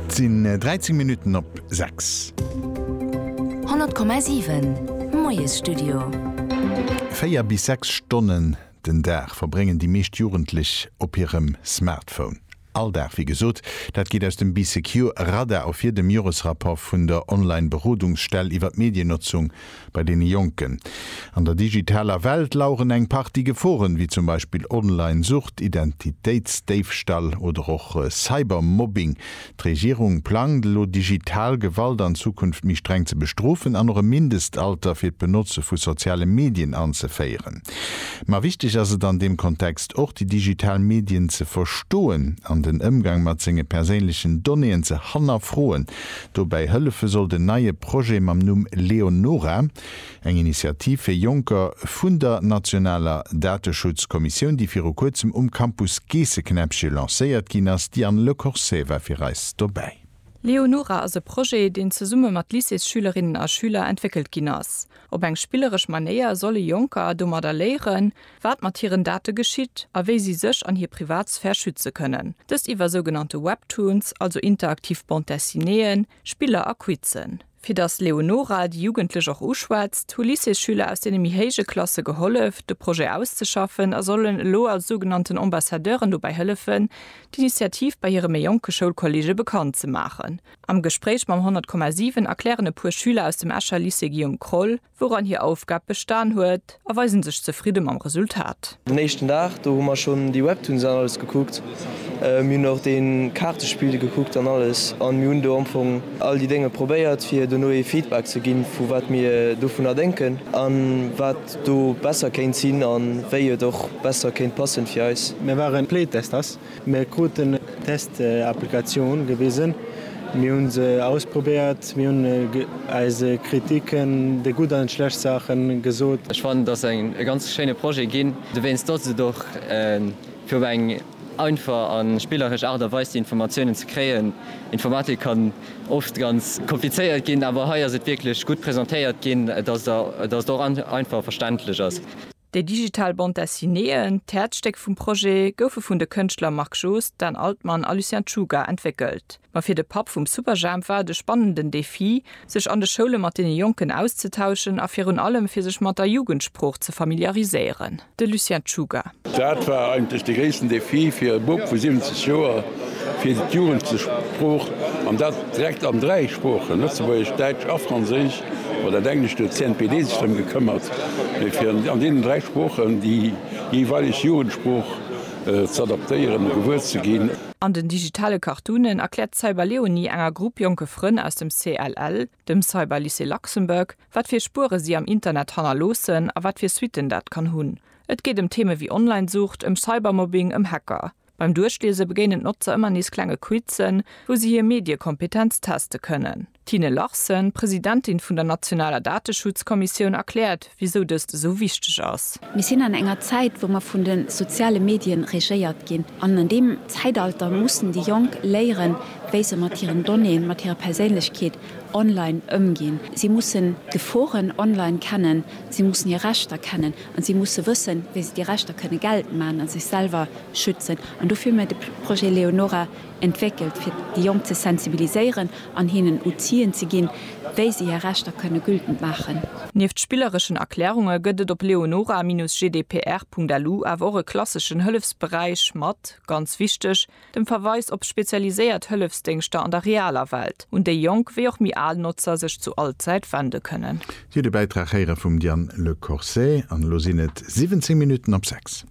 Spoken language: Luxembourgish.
Et sinn 13 Minutten op 6. 100,7, Moiesstudio. Véier bis sechs Stonnen den Dag verbréngen déi meescht Jugendlech op hirem Smartphone. All Dag, wéi gesot. Dat geet aus dem BeeSecure Radar ervir, dem Joresrapport vun der Online-Berodungsstell iwwer d'Mediennotzung Bei deene Jonken an der digitaler Welt laueren eng Partie Geforen, wéi zum Beispill Online-Sucht, Identitéitsdéifstall oder och Cybermobbing. D'Regierung plangt elo, digital Gewalt an Zukunft méi streng ze bestrofen an och e Mindestalter fir d'Benotze vu soziale Medien anzeféieren. Ma wichteg ass et an deem Kontext och, déi digital Medien ze verstoen an den Ëmgang mat senge perséinlechen Donnéeën ze hannerfroen. Dobäi hëllefe soll den neie Projet mam Numm Leonora, eng Initiativ fir Jonker vun der nationaler Dateschutzkommissioun, déi viru kuerzem um Campus Geesseknäppche lancéiert ginn ass. D'Diane Lecorset war fir eis dobäi. Leonora ass e Projet, deen zesumme mat Lycéesschülerinnen a schüler entwéckelt ginn ass. Op eng spilleresch Manéier solle Jonker domadder léieren, wat mat hiren Date geschitt a wéi si sech an hir Privatsphär schütze kënnen. Dëst iwwer sougenannte Webtoons, also interaktiv Bande dessinéeën, Spiller a Quizzen. Fir datt d'Leonora déi Jugendlech och uschwätzt, hu Lycéesschüler aus deene méi héije Klasse gehollef, de Projet auszeschaffen a sollen elo als sougenannten Ambassadeuren dobäi hëllefen, d'Initiativ bei hire méi jonke Schoulkolleege bekannt ze maachen. Am Gespréich mam 100,7 erklären e puer Schüler aus dem Escher Lycée Guillaume Kroll, wouran hir Aufgab bestan huet, a weisen sech zefridde mam Resultat. Den éischten Dag, do hu mer schonn déi Webtoons an alles gekuckt. Mir hunn och dee Kaartespill gekuckt an alles a mir hunn do am Fong all déi Dénge probéiert, fir dono ee Feedback ze ginn, vu wat mir dovunner denken a wat do besser kéint sinn a wéi et och besser kéint passen fir eis. Mir waren Playtesters Mir kruten eng Test-Applikatioun gewisen, mir hu se ausprobéiert, mir hunn eis Kritiken, déi gutt an déi schlecht Saachen, gesot. Ech fannen, et ass e ganz schéine Projet ginn, dowéinst datt et och fir op eng einfach a spilleresch Aart a Weis déi Informatiounen ze kréien. Informatik kann oft ganz komplizéiert ginn, awer hei ass et wierklech gutt presentéiert ginn, datt et och einfach a verständlech ass. Déi digital Bande Dessinéeën, d'Häerzstéck vum Projet, goufe vun de Kënschtler Marc Joost, Dan Altman a Lucien Czuga entwéckelt. Ma fir de Papp vum Superjhemp war et e spannenden Defi, sech an de Schoule mat deene Jonken auszetauschen a virun allem fir sech mat der Jugendsprooch ze familiariséieren. De Lucien Czuga. Dat war eigentlech de gréissten Defi fir e Bub vu 70 Joer, fir d'Jugendsprooch, an dat direkt an dräi Sproochen, Lëtzebuergesch, Däitsch a Franséisch, Bei der Dänglesch huet d'CNPD sech drëm gekëmmert, fir an deenen dräi Sproochen déi jeeweileg Jugendsprooch z'adaptéieren a gewuer ze ginn. An den digitale Cartoonen erkläert d'Cyberleonie enger Grupp jonke Frënn aus dem CLL, dem Cyberlycée Luxembourg, wat fir Spuere si am Internet hannerloossen a wat fir Suitten dat kann hunn. Et geet ëm Theeme wéi Online-Sucht, ëm Cybermobbing, ëm Hacker. Beim Duerchliese begéinen d'Notzer ëmmer nees klenge Quizzen, wou si hir Mediekompetenz teste kënnen. D'Tine Larsen, Presidentin vun der nationaler Dateschutzkommissioun, erkläert, wisou dëst esou wichteg ass. Mir sinn an enger Zäit, wou mer vun de soziale Medien regéiert ginn. An an deem Zäitalter mussen déi Jonk léieren, wéi se mat hiren Donnéeën, mat hirer Perséinlechkeet online ëmginn. Si mussen d'Geforen online kennen, si mussen hir Rechter kennen. An si musse wëssen, wéi se déi Rechter kënne geltend maachen a sech selwer schützen. An dofir hu mir de Projet Leonora entwéckelt, fir déi Jonk ze sensibiliséieren an hinnen Outien ze ginn, wéi se hir Rechter kënne gültend maachen. Nieft spillereschen Erklärunge gëtt et op leonora-gdpr.lu awer och e klasseschen Hëllefsberäich mat, ganz wichteg, dem Verweis op spezialiséiert Hëllefsdéngschter an der realer Welt, un déi jonk wéi och méi al Notzer sech zu all Zäit wende kënnen. Dir hutt e Bäitrag héiere vum Diane Le Corset an elo sinn et 17 Minutten op 6.